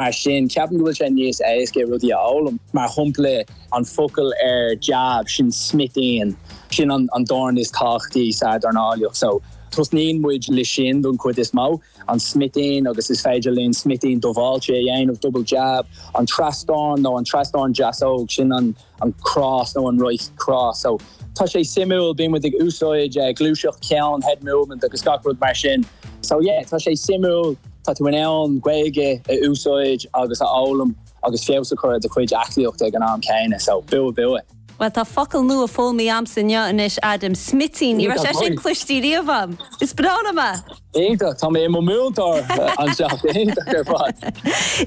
Mar sin, ceapaim go bhfuil sé níos éasca rudaí a fhoghlaim. Mar shompla, an focal ar jab, sin smitín. Sin an dorn is tábhachtaí sa dornálaíocht, so tosnaíonn muid le sin don chuid is mó, an smitín agus is féidir linn smitín dubháilte a dhéanamh, double jab, an trasdorn nó an trasdorn deasóg, sin an. an cross nó an right cross so tá sé suimiúil bíonn muid ag úsáid eh, gluaiseacht ceann head movement agus gach rud mar sin so yeah tá sé suimiúil tá tú in ann Gaeilge a úsáid agus a fhoghlaim agus feabhas a chur ar do chuid aclaíochta ag an am céanna so bua bua. Bhuel tá focal nua foghlamtha a'msa inniu anois, Adam, smitín, ní raibh sé sin cloiste riamh a'm. Is breá liom é! Iontach, tá mé i mo mhúinteoir anseo, iontach ar fad!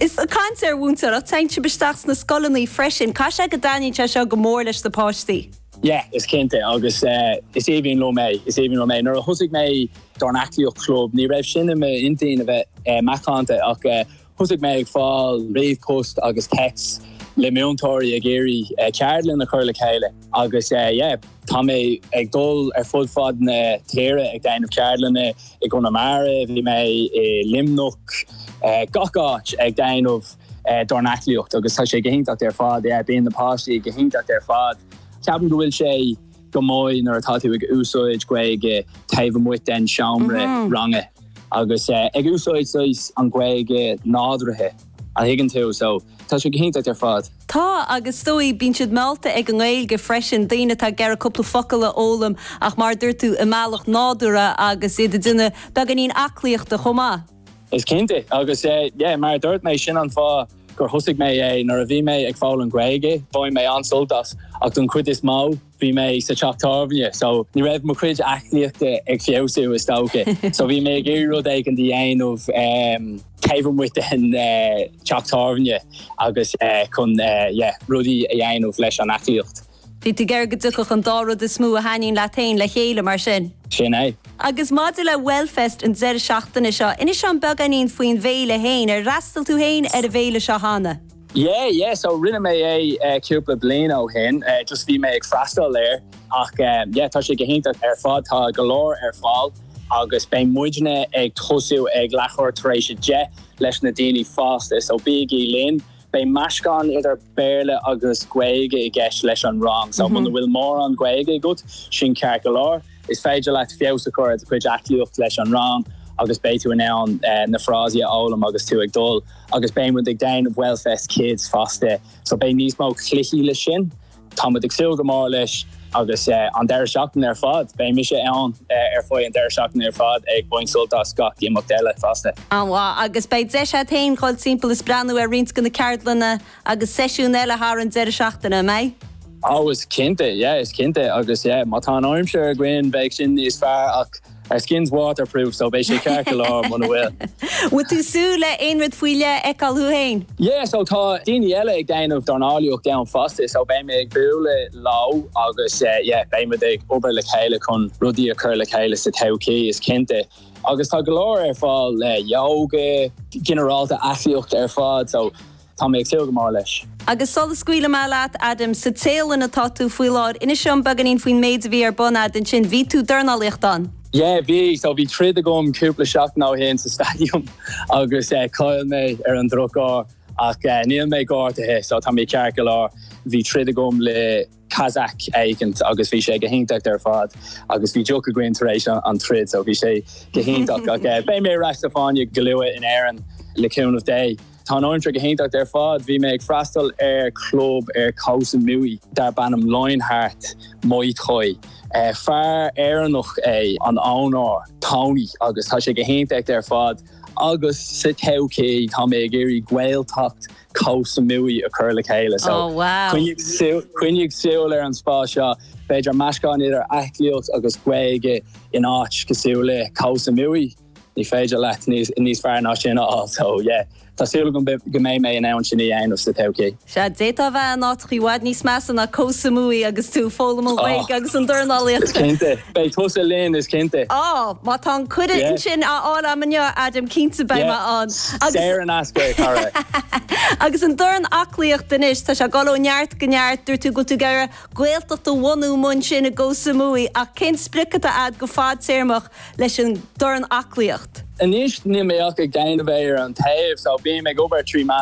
Is ag caint ar mhúinteoireacht téann sibh isteach sna scoileanna freisin, caithfidh sé go dtaitníonn sé seo go mór leis na páistí. Yeah, is cinnte agus is aoibhinn liom é, is aoibhinn liom é. Nuair a thosaigh mé DornAclaíocht Club ní raibh sin i m'intinn a bheith macánta ach Thosaigh mé ag fáil ríomhpost agus texts le múinteoirí ag iarraidh ceardlann a chur le chéile agus yeah, tá mé ag dul ar fud fad na tíre ag déanamh ceardlanna, i gConamara, bhí mé i Luimneach, gach áit ag déanamh dornaclaíocht agus tá sé go hiontach ar fad, yeah, bíonn na páistí go hiontach ar fad. Ceapaim go bhfuil sé. go maith nuair atá tú ag úsáid Gaeilge taobh amuigh den seomra ranga agus ag úsáid saghas an Gaeilge nádúrtha an dtuigeann tú, so tá sé go hiontach ar fad. Tá, agus is dóigh bíonn siad meallta ag an nGaeilge freisin, daoine atá ag iarraidh cúpla focal a fhoghlaim ach mar a dúirt tú, i mbealach nádúrtha agus iad ag déanamh beagáinín aclaíochta chomh maith. Is cinnte, agus yeah mar a dúirt mé sin an fáth gur thosaigh mé é, nuair a bhí mé ag foghlaim Gaeilge bhain mé an-sult as ach don chuid is mó bhí mé sa teach tábhairne so ní raibh mo chuid aclaíochta ag feabhsú is dócha so bhí mé ag iarraidh rud éicint a dhéanamh um taobh amuigh den teach tábhairne agus chun yeah rudaí a dhéanamh leis an aclaíocht. Bhí tú ag iarraidh go dtiocfadh an dá rud is mó a thaitníonn leat féin le chéile, mar sin. Sin é. Agus maidir le Wellfest an deireadh seachtaine seo, inis dom beagáinín faoin bhféile féin. Ar fhreastail tú féin ar an bhféile seo cheana? Yeah, yeah, so rinne mé é cúpla bliain ó shin, just bhí mé ag freastal air ach yeah tá sé go hiontach ar fad, tá go leor ar fáil agus beidh muidne ag tosú ag leathuair tar éis a deich leis na daoine fásta, so bígí linn! Beidh meascán idir Béarla agus Gaeilge i gceist leis an rang, so muna bhfuil mórán Gaeilge agat, sin ceart go leor. Is féidir leat feabhas a chur ar do chuid aclaíocht leis an rang agus beidh tú in ann na frásaí a fhoghlaim agus tú ag dul. Agus beidh muid ag déanamh Wellfest Kids fosta, so beidh níos mó cluichí leis sin. Táimid ag súil go mór leis agus an deireadh seachtaine ar fad. Beidh mise ann ar feadh an deireadh seachtaine ar fad ag baint sult as gach imeacht eile fosta. An-mhaith. Agus beidh deis agat féin dhul timpeall is breathnú ar roinnt de na ceardlanna agus seisiúin eile thar an deireadh seachtaine, an mbeidh? Oh, is cinnte. Yeah, is cinnte. Agus yeah, má tá an aimsir againn, beidh sin níos fearr ach. Our skin's water proof so beidh sé ceart go leor muna bhfuil. Bhfuil tú ag súil le aon rud faoi leith a fheiceáil thú fhéin? Yeah so tá daoine eile ag déanamh dornálaíocht ann fosta so beidh mé ag bualadh leo agus yeah beimid ag obair le chéile chun rudaí a chur le chéile sa todhchaí is cinnte. Agus tá go leor ar fáil le yoga, ginearálta aclaíocht ar fad so Tá mé ag súil go mór leis. Agus sula scaoilfidh mé leat, Adam, sa Téalainn atá tú faoi láthair, inis liom beagáinín faoin méid a bhí ar bun agat ansin. Bhí tú ag dornálaíocht ann. Yeah, bhí. So bhí troid agam cúpla seachtain ó shin sa staidiam agus chaill mé ar an drochuair ach níl mé gortaithe so tá mé ceart go leor. Bhí troid agam le. Kazakh éigint agus bhí sé go hiontach ar fad agus bhí deoch againn tar éis an troid so bhí sé go hiontach ach eh beidh mé ar ais sa fáinne go luath in Éirinn le cúnamh Dé. Tá an áit go hiontach ar fad, bhí mé ag freastal ar club ar Koh Samui darb ainm Lionheart Muay Thai. Eh fear Éireannach é an owner, Tony, agus tá sé go hiontach ar fad agus sa todhchaí tá mé ag iarraidh Gaeltacht Koh Samui a chur le chéile so coinnigh súil ar an spás seo. B'fhéidir meascán idir aclaíocht agus Gaeilge in áit cosúil le Koh Samui. Ní féidir leat níos fearr ná sin a fháil so yeah. Tá súil agam go mbeidh mé in ann sin a dhéanamh sa todhchaí. Sea, d'fhéadfá a bheith in áiteachaí i bhfad níos measa ná Koh Samui agus tú ag foghlaim na Gaeilge agus an dornálaíocht. Beidh tusa linn is cinnte. Ó, má tá an cuireadh ansin á fháil agam inniu, a Adam, cinnte beidh mé ann. Saor in aisce, a chara. Agus an dornaclaíocht anois, tá sé ag dul ó neart go neart. Dúirt tú go bhfuil tú ag iarraidh Gaeltacht a bhunú mar sin i gKoh Samui, ach cén sprioc atá agat go fadtéarmach leis an dornaclaíocht? Anois níl mé ach ag déanamh é ar an taobh, so bím ag obair trí mheán